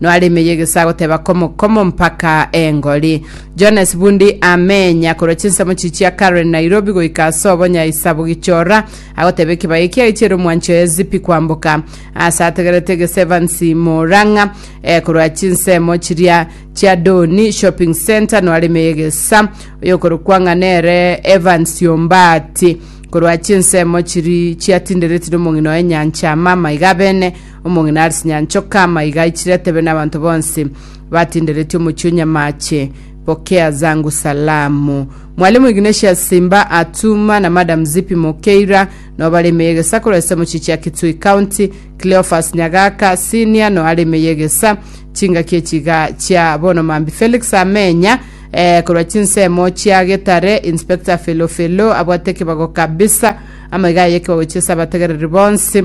Noaremeye egesago teba komo komo mpaka engori. Jones Bundi amenya korwa chinsemo chichia Karen Nairobi goika ase obonya isabu Gichora agoteba ekebaya ekia echiere omwancho ya Zipi kwamboka ase ategerete gese Evans Morang'a eh, korwa chinsemo chiria chia Doni Shopping Centre noaremeye egesa oyokorokwa ng'a nere Evans Ombati korwa chinsemo chiri chiatinderetie nomong'ina oye Nyancha Mama iga bene Omong'ina are sinyancho kama iga aichire atebe n'abanto bonsi batinderetie omochie o Nyamache, Pokea zangu salamu. Mwalimu Ignatius Simba Atuma na Madam Zipi Mokeira no bare ime y'egesa korwa ase omochichi ya Kitui County, Cleophas Nyagaka Senior no are ime y'egesa. Chingaki echi iga chia bono Mambi Felix Amenya eh, korwa chinsemo chia Getare, Inspector Felo Felo abwate ekebago kabisa, amaiga aye ekebago chia ase abategereri bonsi.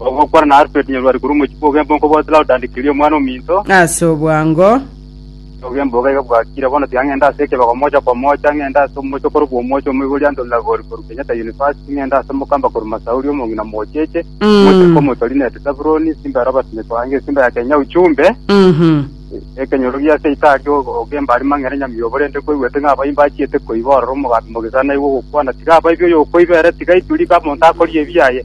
Ogokwana na Alfred Nyarwari korwa omochie bwa Ogembo nkobote Laurda and Kerio omwana ominto. Ase obwango, Ogembo iga iga bwakire bono tiga ng'ende ase ekebego mocha kwa mocha, ng'ende ase omochie okorokwa Omochie Omoibori Anthony Lagori korwa Kenyatta University, ng'ende ase Mokamba korwa Masauri Omong'ina Mocheche, Mm. Mochie Komotorineti Sabuloni, Simba Robert Nyekoange, Simba ya Kenya Uchumbe, mhm, ekenyorogia ase Itari o- Ogembo ari mang'ere nyamiobo rende koigwete ng'a abaimbi achiete koiba ororo omogambi mogisana aigwe ogokwana tiga abaibi oyo okoibera tiga ituri iga monto akorie ebiaye.